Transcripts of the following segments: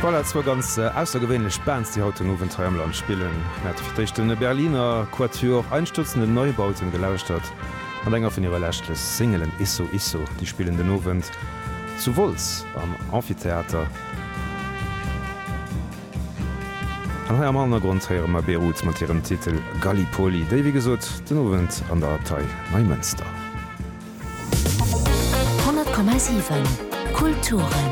Voilà, zwou ganz aussergewéinlech Bands, déi haut den Owend hei am Land spillen. Mir hate fir d'éischt de Berliner Quatuor Einstürzende Neubauten gelauschtert mat enger vun hire leschte Singelen, Isso Isso. Déi spillen den Owend zu Wolz am Amphitheater. An hei am Hannergrond héiere mer Beirut mat hirem Titel Gallipoli, déi wéi gesot den Owend an der Abtei Neimënster. 100,7 Kulturen.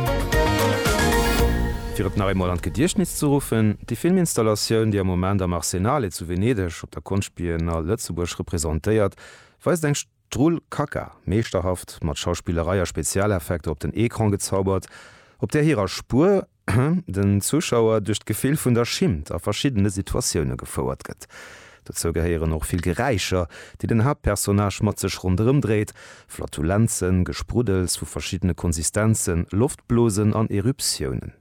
Fir et nach eemol an d'Gediechtnis ze ruffen, Déi Filminstallatioun, déi am Moment am Arsenale zu Venedeg op der Konschtbiennale Lëtzebuerg representéiert, weist eng Strull Kaka, meeschterhaft mat Schauspillerei a Spezialeffekter op den Ecran gezaubert, op där hirer Spuer, den Zuschauer duerch d'Gefill vun der Schimmt a verschiddene Situatioune gefouert gëtt. Dozou gehéieren och vill Geräischer, déi den Haaptpersonnage mat sech ronderëm dréit, Flatulenzen, Gespruddels vu verschiddene Konsistenzen, Loftblosen an Eruptiounen.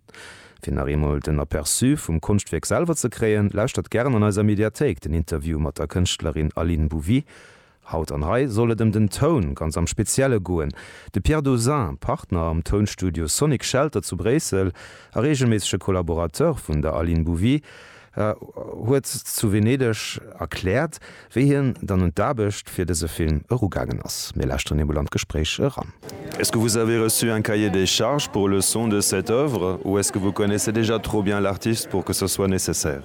Fir nach eemol den Aperçu vum Konschtwierk selwer ze kréien, lauschtert gären an eiser Mediathéik den Interview mat der Kënschtlerin Aline Bouvy Haut an hei soll et ëm den Toun ganz am Spezielle goen. De Pierre Dauzin, Partner am Tounstudio Sonic Shelter zu Bréissel a reegelméissege Collaborateur vun der Aline Bouvy, huet zu Venedeg erkläert, wéi hien dann un d'Aarbecht fir dëse Film erugaangen ass. Mir lauschteren emol an d'Gespréich eran. Est-ce que vous avez reçu un cahier des charges pour le son de cette œuvre ou est-ce que vous connaissez déjà trop bien l'artiste pour que ce soit nécessaire?